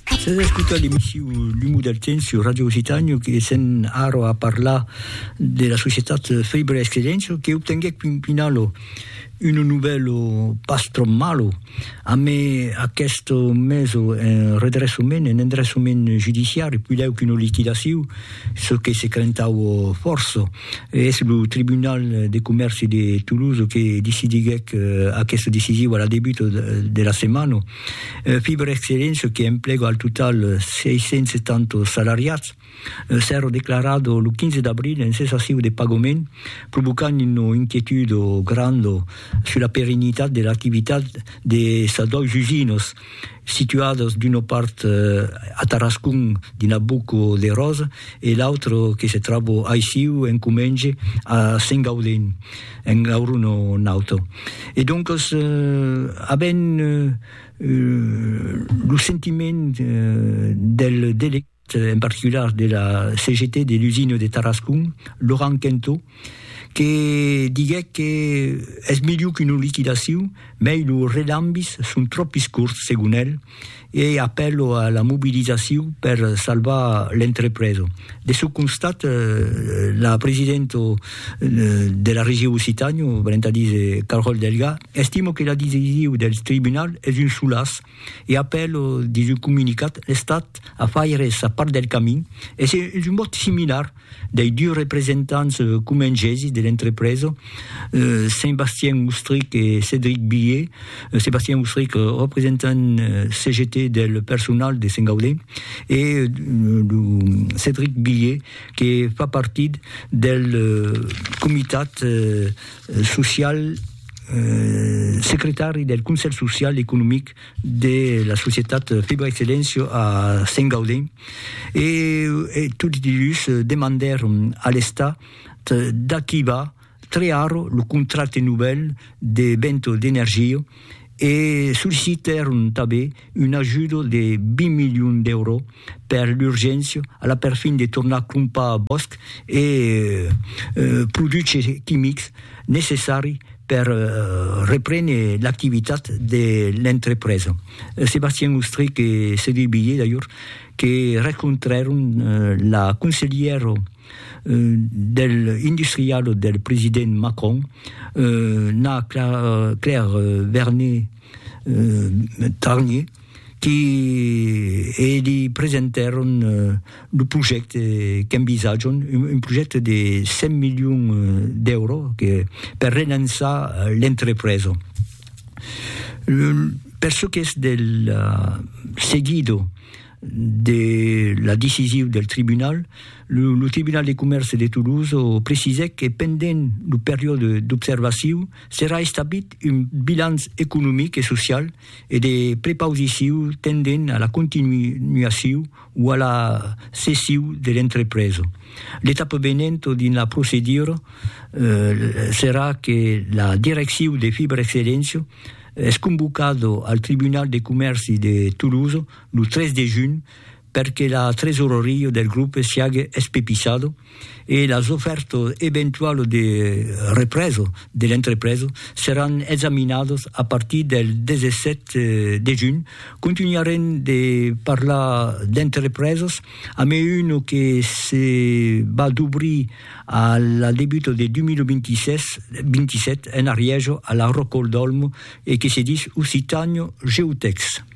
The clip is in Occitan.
Sas a escotar l'emissiu L'umu del temps sur Radio Occitània que sèn ara a parlar de la societat Fèibre Escredenço que obtenguèc Pimpinalo uno novèlo pas tròp malo amé aqueste meso en redressament, en endressament judiciari, puidèu qu'una liquidaciu, çò que se crentau fòrça. Es lo Tribunal de Comèrci de Toulouse que decidiguèc aqueste decisiu a la debuta de la setmana. Fiberexcellent, çò que emplega al total 670 salariats, s'èra declarat lo 15 d'abril en cessaciu de pagament, provocant una inquietud granda sus la perennitat de l'activitat de sas dois usinas, situadas d'una part a Tarascon dins la Boca de Rosa e l'autra que se tròba aicí en Comenge a Sengaudent. en lor un o un auto. E doncos, avent lo sentiment del delegat en particular de la CGT de l'usina de Tarascon, Laurent Quinteau, que diguèc que es melhor qu'una liquidacion, mei los relambis son tròpis corts, segon el, e apèlo a la mobilizacion per salvar l'entrepresa. De çò constat, la presidenta de la Region Occitània, valent a díser Carole Delga, estima que la decision del tribunal es un solaç e apèla dins un comunicat l'Estat a faire sa part del camin e es un mot similar dei dus representants comengesis de l'entrepresa, Sébastien Oustric e Cédric Billet, Sébastien Oustric, representant CGT del personal de Sent Gaudé, e lo Cédric Billet que fa partit del comitat social, secretari del Conselh Social, Economic, de la societat Fibra Excellencio a Sengaulin e tots dilhus demandèron a l'Estat d'activar tre arro lo contracte novèl de Bento d'Energia e sollicitèron tanben un ajudo de 20 milions d'èuro per l'urgéncia, a la perfin de tornar crompar a bòsc e produches quimics necessari per reprene l'activitat de l'entrepresa. Sébastien Ostrich e Cédric Billé, d'ajor, que rencontrèron la conselhièra del industrialo del president Macron, Nna Claire Vernet-Tarnier, qui e li presentèron lo projècte qu'envisatjon, un projècte de 100 milions d'èuro per relançar l'entrepresa. Per çò qu'es del seguido de la decisiu del tribunal, lo tribunal de comèrce de Toulouse precisèt que pendent lo periòde d'observaciu serà establit un bilanç economic e social e de prepausiciu tendent a la continuaciu o a la cessiu de l'entrepresa. L'etapa venent dins la procedura serà que la direcciu de Fibrexcellentia es convocada al Tribunal de Comèrci de Tolosa lo 3 de junh per que la tresoreria del grupe siague espepissada e las ofèrtas eventualas de represa de l'entrepresa seràn examinadas a partir del 17 de junh. Contunharem de parlar d'entrepresas amé una que se va dobrir a la debuta de 2026-27 en Arièja, a la Rocòl d'Òlmo, e que se dis Occitània Geotècs.